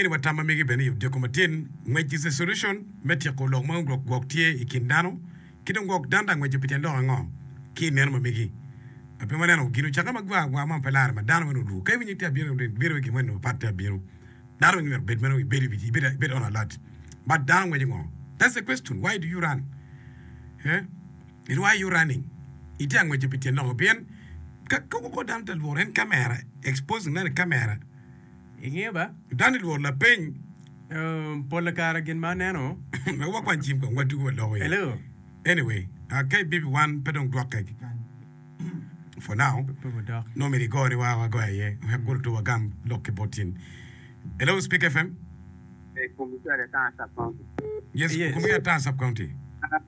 Angeyo ni wat tam ma mege bene i Odiko Matin ngwec is a solution me tyeko lok ma ongrok gwok tye i kin dano ki dong gwok danda ngweco pi tyen lok ango ki i neno ma mege. A pe waneno gin ocakke ma gwa agwa ma pe lare ma dano meno oru ka iwinyo ite abino rin bino i gin moni ma pat te abino dano meno myero bed meno ibed i ibed on alert but dano ngweco ngo that's the question why do you run eh and why are you running ite angweco pi tyen lok ngo pien ka koko dano te lworo en camera exposing neno i camera I nge ba, dano lworo lapeny. Pole kare gin ma aneno. Wek wakwan cim kong wa dugu wa loko iye. Hello. Anyway, ah, ka ibibi wan pe dong dwokke kekany. For now, Pe wudok. nongo myero igone wa wago aye wek kulu two wagam lok ki bot in. Hello, Speak FM. Yes, Yes. Kumi Ataa Sub County.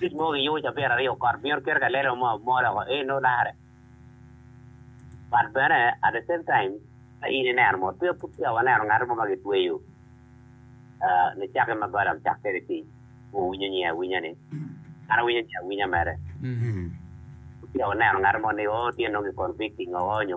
Tic mogo giyubo ca pyera aryo kot myero kite ka lelo mo mol oko ee nongo lakare but bene at the same time ka in ineno mo twir pud peya waneno ngat mo ma gitweyo nicake ma Balam cak kwede tic ma owinyo nyinge awinya ni an awinyo nyinge awinya mere pud peya waneno ngat mo ni oo tye nongo ki convicting oo nyo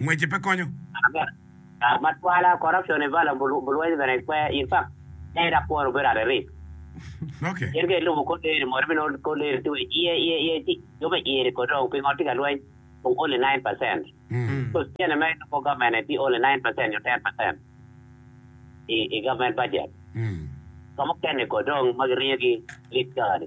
ngwece pe konyo. Aa ma twala, corruption i valor bulweny bene pe in fact pe dok kwon obedo at a risk. Okay. In ka ilubo kor leri mot ibinongo kor leri tye wa i iye iye iye ci jo me iye ni kodi dong pingo tye ka lweny kong only nine percent because cene ma ilubo government ni tye only nine percent nyo ten percent i government budget. Jo mukene kodi dong ma giringo gi lik kare ni.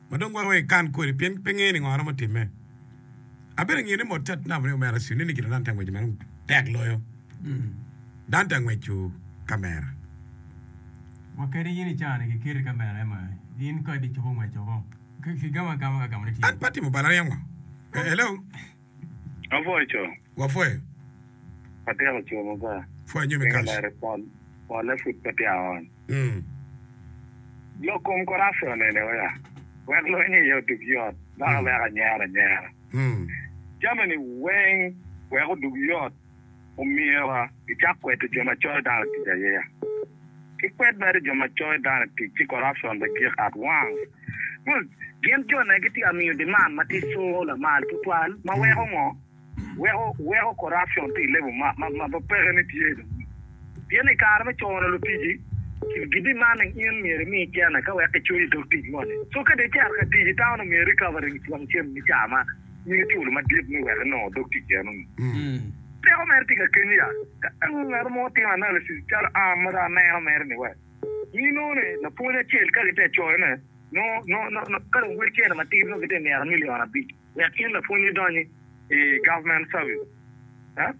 ma dong gwoko wek ekan kodi pien pe ngeyo ningo romo timme. Abedo ngiyo ni mot tat namo ni omera Sydney ni kite dan te angwec madong tek loyo dan te angweco kamera. Wa kadi in icani ki keti kamera ema in kadi icobo ngweco ko ki gamo agama ka gamo ne tye. An pe atimo balariya ngo. Hello. Wapwoyo co. Wapwoyo. Watyeko co ma ba. Pwoya nyo me kac. Pinga lare pol, polle pud pe tye aony. Mm. Lok kom korapte onene wea, wek lweny iye odug yot, dok awek anyero anyera. Mm. Jameni weng wek odug yot. Omyero icak kwedo jo ma coyo dano tic aye. Kik kwed mere jo ma coyo dano tic ci corruption bed gik at wang. Kun gin jone gitye ka miyo demand ma tye so lamal tutwal ma weko ngo? Weko weko corruption tye i level ma ma peke ni tye dong. Pien i kare me cono lutici ki demanding in myero imi cene ka wek ki coyi dog tic moni. So ka dong icito ka tic i town omyero recovery wang cen me caa man. nyinge culu madit ni wek enongo dog tic enoni. Teko mere tye ka keny ya. Ka dong ngat mo timo analysis calo an ma dong aneno mere ni wek mi nongo ni lapwony acel ka gite coyo ne nongo nongo ka dong wek cene matidi nongo gite mito million abic wek in lapwony idonyi i government service huh?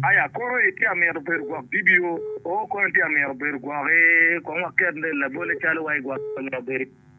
Aya kono itye ka mito bedo gwok DBO oo kono itye ka mito bedo gwok i kong waket labole calo wa igwok mito bedo i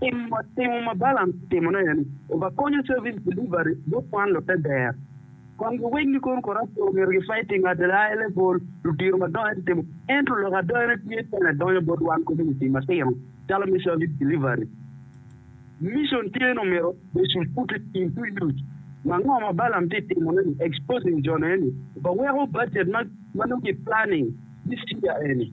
Tim ma timo ma Balaam timo-nu aye-ni, obakonyo service delivery bot kwan lute ber. Kwan giwegi gikono kor Athoro myero gifai timo adela A level ludiro madongo ento timo ento lok adonene tye pene donyo bot wan community matino calo me service delivery. Mission tye ni omyero they should put it into use. Ma ngo ma Balaam tye timone-ni, exposing jo-ni eni, obaweko budget ma nongo ki planning this year eni.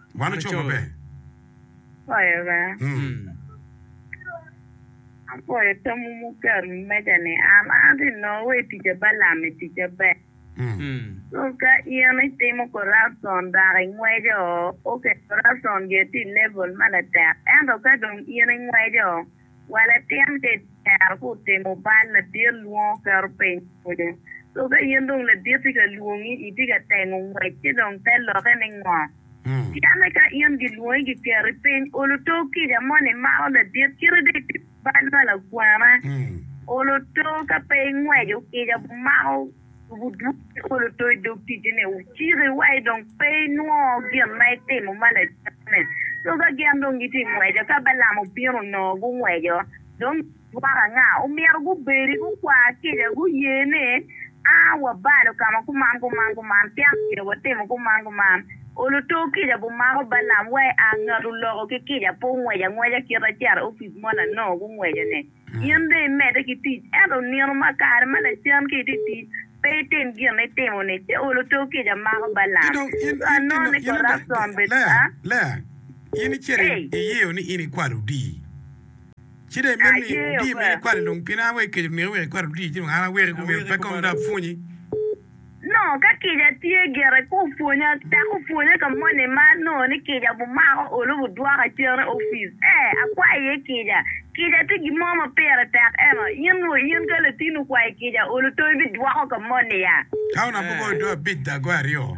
Wan oco maber. Apwoyo Obanga. Apwoyo tamwu muketo i wi meja ni an atye nongo wa i tica ba lam i tica ber. So ka in itimo corruption dok ingweco, okay corruption gi tye i level ma latek ento ka dong in ingweco Wa latin ka icero ka otimo bal, ladit lwongo keto piny pwonye. So ka in dong ladit tye ka lwongi, itye ka tengo ngwec ci dong te lokke ni ngo? Pien ni ka in gilwongi giketi piny, olo too kica moni imako ladit kite dong itimo bal ma lakwena. Olo too ka pe ingweco kica bumako. Tugo duk ki olo to i dog ticine, wuciki wa i dong pe inwongo gin ma itimo ma lacen-ni. Co ka gin dong gitye ngweco, ka Balaam obino onongo gungweco, dong gidwoko anga? Omyero gubedi gukwar kica, guye ni, A, wabalo ka ma kuman kuman kuman, pien omyero watimo kuman kuman. Olo to kica bumako Balaam wa i aa, ngat oloko ki kica pe ongweco angweca kite acata opic moni anongo gungweco-ni. In dong imedde ki tic, ento nino ma kare ma lacen ki itye tic, pe itim gin ma itimo-ni. Ceol oto kica amako Balaam. Ci anongo ni Korazon bed ka. Lea, in icito iyeyo ni in ikwalo odii, ci dong imito ni odii meno ikwal-li dong pien an aye akeco niki wek ikwal odii, ci dong an aweki kong myero pe kong dong apwonyi. Nongo ka kica tye gire pe opwonya dok opwonya ka moni ma anongo ni kica bumako olu budwoka cen i opic. Ee, akwayo iye kica. Kica tye gin mo ma pire tek eno. In nwo in ka latin okwayo kica olu tongi bidwoko ka moni ya? Taun abugo dwe abic dagoe aryo.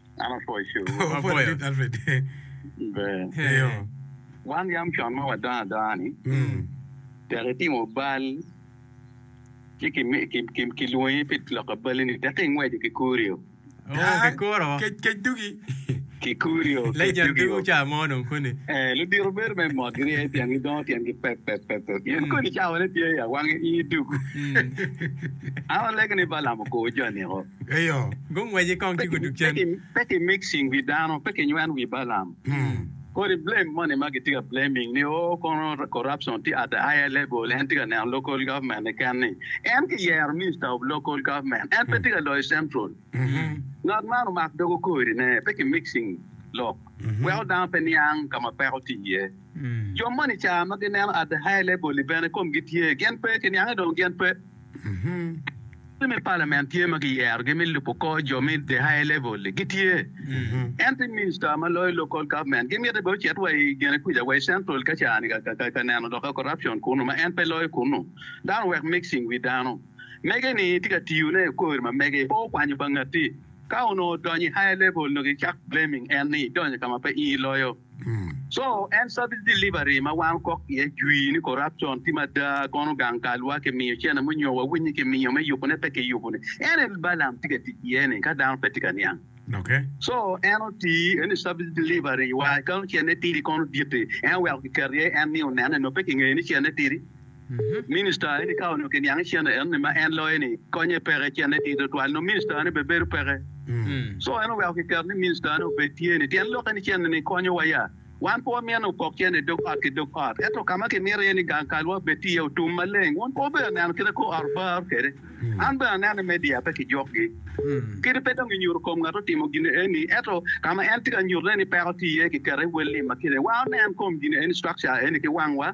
An apwoyo coo. Wan yam con ma wadongo adonga ni tek itimo bal ci kilwongi pi loko bali ni tek ingweco ki kurio. Ludito bedo me mot girye pien gidongo tyengi pep pep pep. In kodi cawane tye i awangi in iduku. An alegi ni Balam okor jo niko. Pe ki mixing wi dano, pe ki nyweno wi Balaam. Kodi blame moni ma gitye ka blaming ni oh kono corruption tye at the higher level, en tye ka neno local government keken ni. En ki yero minister of local government, en pe tye ka loyo central. Ngat man omak doge okori ne, pe ki mixing lok, weko dano pe niang ka ma peko tye iye. Jo moni ca ma gineno at the higher level-li bene komgi tye, gin pe, ki niange dong gin pe. Lutini me palamen tye ma kiyerogi me lubo kor jo me the higher level-li gitye, ento i minista ma loyo local government gimite bene ocit wa i gene kwica wa i central ka ca-ni ka neno dok corruption kunu ma en pe loyo kunu. Dano owek mixing wi dano. Mege-ni tye ka tiyone i kori ma mege pe okwanyo pa ngati. Ka onongo odonyo i higher level onongo gicak blaming en ni idonyo ka ma pe in iloyo. Co en service delivery ma wan okok iye jwii ni corruption tye mada kono gang kalwa ki miyo cene mo nyo wa winyi ki miyo me yubo ne pe ki yubo ni en en Balam tye ka tic iye ni ka dano pe tye ka niang co en oti iye ni service delivery wa kano cene tidi kono diti en oweko ki keto iye en ni onene nyo pe ki ngeyo ni cene tidi. Minista eni ka onongo kiniange cene en ni ma en loyo ni konye peke cene tye twatwal nongo minista ne bene bedo peke so en oweko kiketo ni minista ne obed tye ni tyen lokke ni cene ni konyo wa ya wan pe wamyene opok cene idog ot ki dog ot ento kama kimito iye ni gang kalwa obed tye iye otum maleng wun pe wubedo neno kit akor ot bar kwede an bene aneno i media pe kijwok gi kadi pe dong inyuto kom ngat otimo gin eni ento kama en tye ka nyuto ne ni peko tye iye kiketo iye wel lim ma kine wa onen kom gin eni structure eni ki wangwa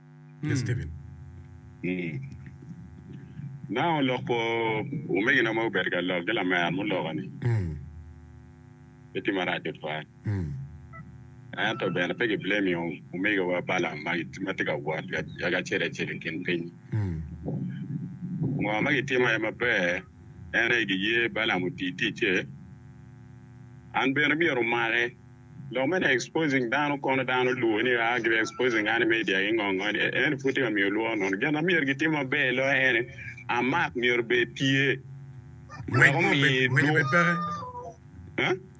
Yes, Kevin. Nongo olok kwo omegina ma obedo ka lok ki lamer muloka ni pe tye marac tutwal. Ento bene pe ki blame omegawa Balam ma tye ka wot yaka acel acel i kin piny. Ngo ma gitimo aye maber en aye giye Balam oti ticce. An bene myero omake. Lok mene exposing dano kono dano lubo ni aa gibe exposing an i media gi ngo ngo ni ene pud tye ka miyo lworo nono gin ma myero gitim maber loyo ene a mark myero obed tye wek omi dwoko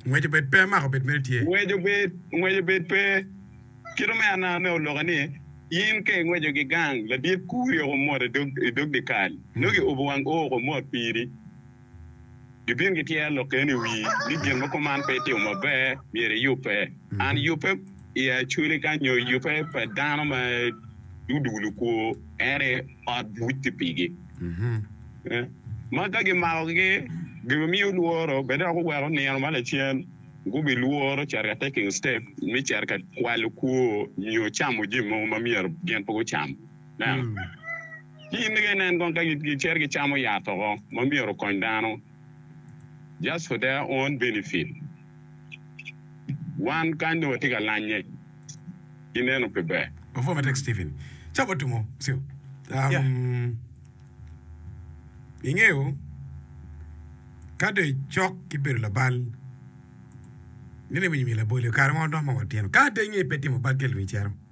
Ngwec obed pe mark obed mere tye. Ngwec obed ngwec obed pe kite me anaa me oloka ni in ka ingweco gi gang ladit kuri oko mot idog idog dikal nongo iubo wang oo oko mot piri. Gibin gityer lok kene i wii ni gin mogo man pe timo maber myero iyubbe. An yubbe i acweli ka nyo yubbe pa dano ma dudu lukwo ene ot buc ti pigi. Ma ka gimako gi gin miyo lworo bene dok oweko nino ma lacen gubi lworo cito ka taking step me cito ka kwalo kwo nyo camo jami mogo ma myero gin pe gucam. Ci in nigge nen kong ka gicito gicamo yat oko ma myero okony dano just for their own benefit. Wan kany dong watye ka lanye ki neno pe ber. Ingeyo ka dong icok ki bedo labal ni lewinyo myero laboli kare mo dong ma watino ka atengnge pe timo bal tye lwinyi cito.